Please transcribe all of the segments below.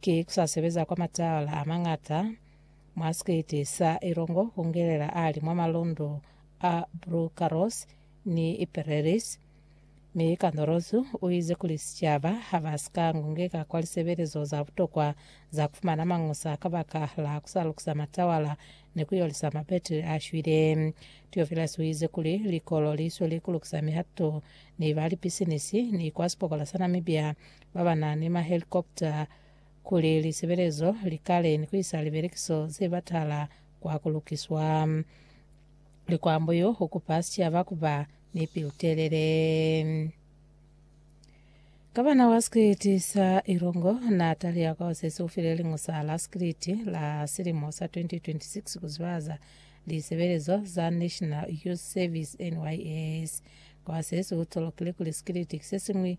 Ki ku sa sebeza kwa mataala a mañata mwa sikiti sa Ilongo ku ngelela ali mwa malundu a Brucarros ni Pereris. Mi Candorozu u ize kuli sicaba ha ba si ka ngungeka kwa lisebelezo za butokwa za ku fumana mañusa kabaka la ku sa lukisa matawala ni ku yolisa mabetri a shwile. Theophilus u ize kuli likolo li sweli ku lukisa mihato ni ba lipisinisi ni kwa sipokola sa Namibia ba ba na ni mahelikopta kuli lisebelezo li kale ni ku isa libelekiso ze batala kwa ku lukiswa. Likwambo yo u kupa sicaba ku ba ni pilu-telele. Gavana wa sikiliti sa Ilongo na taliya kwa Osesi u file liñusa la sikiliti la silimo sa 2026 ku zibahaza lisebelezo za National Youth Service, NYS. Kwa Osesi u tolokile kuli sikiliti ki se siñwi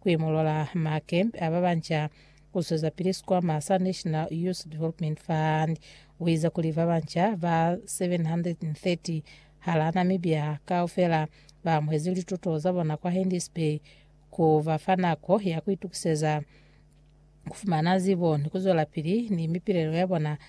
kuimolola makempe ababanca kuzwezapili sikwama sa National Youth Development Fund. Uize kuli babanca ba 730 hala Namibia kaufela baamuhezi lituto zabona kwa Hendy's Bay, kubafa nako ya kuitukiseza kufumana zibo ni kuzwelapili ni mipilelo yabona